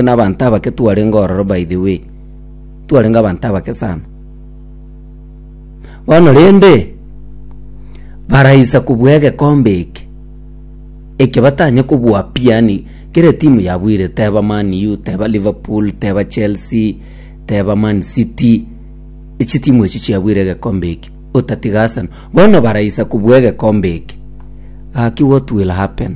nabanto abake twarenge ororo by the way. Twarenge abanto abake sana. Bono rende, baraisa kobua egekombe eke. Eke batanye kobua pi yani kera etimu yabuire teba Man U, teba Liverpool, teba Chelsea, teba Man City. Echi timu echi chiabuire egekombe eke. Otatiga Arsenal. Bono baraisa kobua egekombe eke. Gaki what will happen?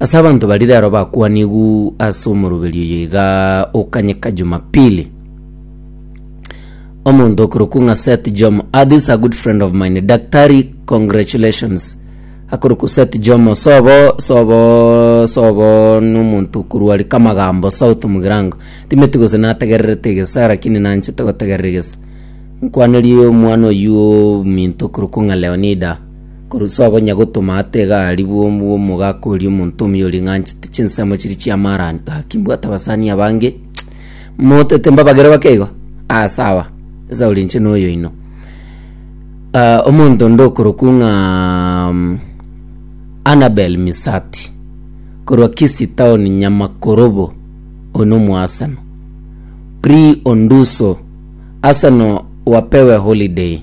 Ase abanto baria rero bakwanigwe ase omoroberio oyo iga okanyeka Jumapili. Omonto okorokwa ng'a Seth Jomo. Ah, this is a good friend of mine. Daktari, congratulations. Akorokwa Seth Jomo. Sobo, sobo, sobo n'omonto okorwari Kamagambo South Mugirango. Timeti gose nategererete egesa lakini nanchete gotegerera egesa. Nkwanerie omwana oyio ominto okorokwa ng'a Leonida. Korwa ase abanyagotoma ata egari bw'omu bw'omogaka oria omonto omio oria ng'anchete chinsemo chiria chi'amaarani. Gaki mbwate abasani abange motete mbabagere bake igo. Aa sawa, Esau rinche noyo oino. Ah, omonto onde okorokwa ng'a mm, Annabel Misati korwa Kisii town Nyamakorobo oino omoaseno. Pri Onduso, Arsenal wapewe holiday.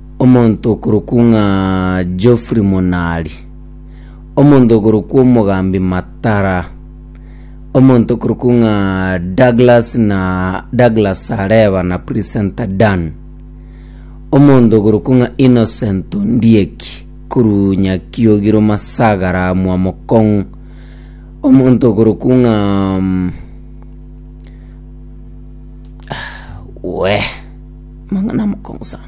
Omonto okorokwa ng'a Geoffrey Monari. Omonto okorokwa omogambi Matara. Omonto okorokwa ng'a Douglas na Douglas Sareba na Presenter Dan. Omonto okorokwa ng'a Innocent Ondieki korwa Nyakiogiro Masagara Mwamokong'u. Omonto okorokwa ng'a mm, weh mang'ana amokong'u sana.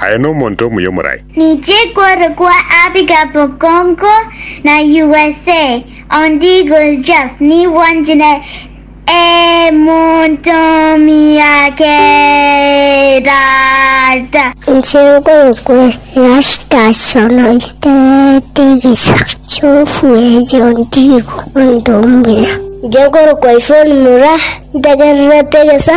Aye nomonto omuya omorai. Ninche kore kwa Abigail Bokongo na usa on Eagle Jeff nigo njine emonto omuya kerata. Inche nkore kwa Erastus onoiterete egecha chiofu eyo ontigo onto omuya. Inche nkore kwa Yvonne Mura ntegererete egecha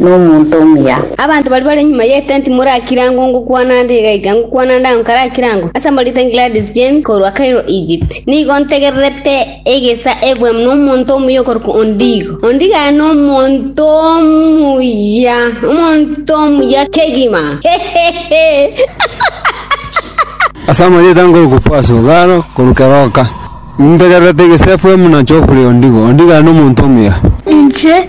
nomonto omuya. Abanto baria bare nyuma y'etenti morakire ango ngokwana ande iga iga ngokwana ande ango karakire ango, ase amorita Gladys James korwa Cairo Egypt. Nigo ntegererete egesa ebwemu nomonto omuya okorokwa Ondigo. Ondigo aye nomonto omuya, omonto omuya kegima. Ase amarieta nkorokwa Pass Ogalo korwa Keroka. Ntegererete egesa efwemu na Geoffrey Ondigo. Ondigo aye nomonto omuya. Inche.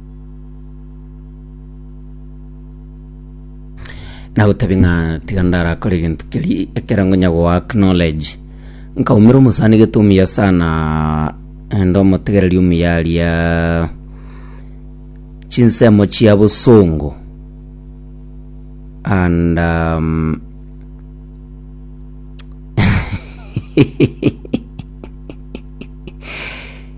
Nagotebi ng'a tiga ndarakore gento keri ekero ngonya goa knowledge nkaumera omosani gete omuya sana ende omotegereri omuya aria chinsemo chia bosongo and um,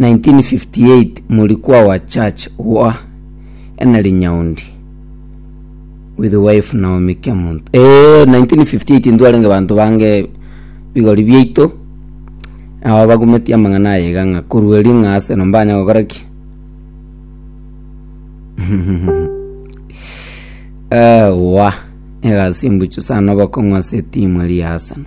1958 Morikwa wa Church Wah Enari Nyaundi with wife Naomi Kemonto eh 1958 ntwarenge banto bange bigori biaito nabo bagumetie amang'ana aye iga ng'a korwa eri ng'a ase no mbanya gokora ki eh wa egasi mbuchu sana obokong'u ase etimu eri ya Arsenal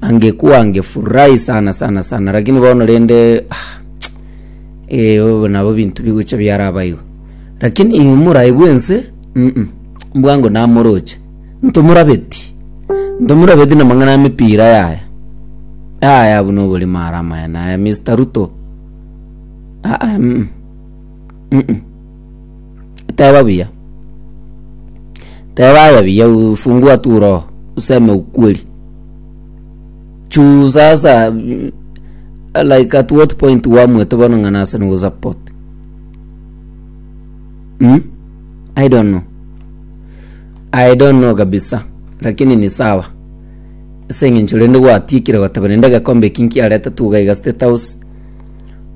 angekuwa angefurahi sana sana sana lakini bono rende ah, eh, obo nabo bintu bigocha biarabaigo lakini omorai bwense mm, mbwango namoroche ntomorabeti ntomorabeti namang'ana amepira yaya yaya abu nobori mara amaya naya mr ruto ah, ah, mm, mm, mm. teba buya teba aya buya ufungua tu roho useme ukweli juu sasa mm, like at what point wamwete bono ng'a nase nogosupport mm? i don't know i don't know kabisa lakini ni sawa ase eng'encho rende gwatiekire goteba rende egekombe eki nkiarete tugaiga state house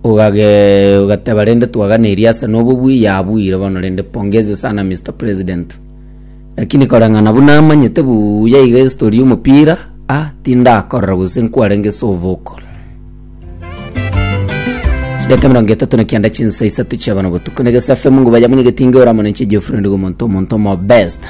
ogage ogateba rende twaganeria ase nobo bwi yabuire bono rende pongezi sana mr president Lakini koreng'ana buna amanyete buya iga esitori y'omopira, a tindakorora gose nkwarenge ase ovocal. Chidakika emerongo etato na kianda chinsa isato chia bono botuko, na egesafe mungu bayamunye getinge ore amo ninche Geoffrey Ndigo omonto omonto omo best.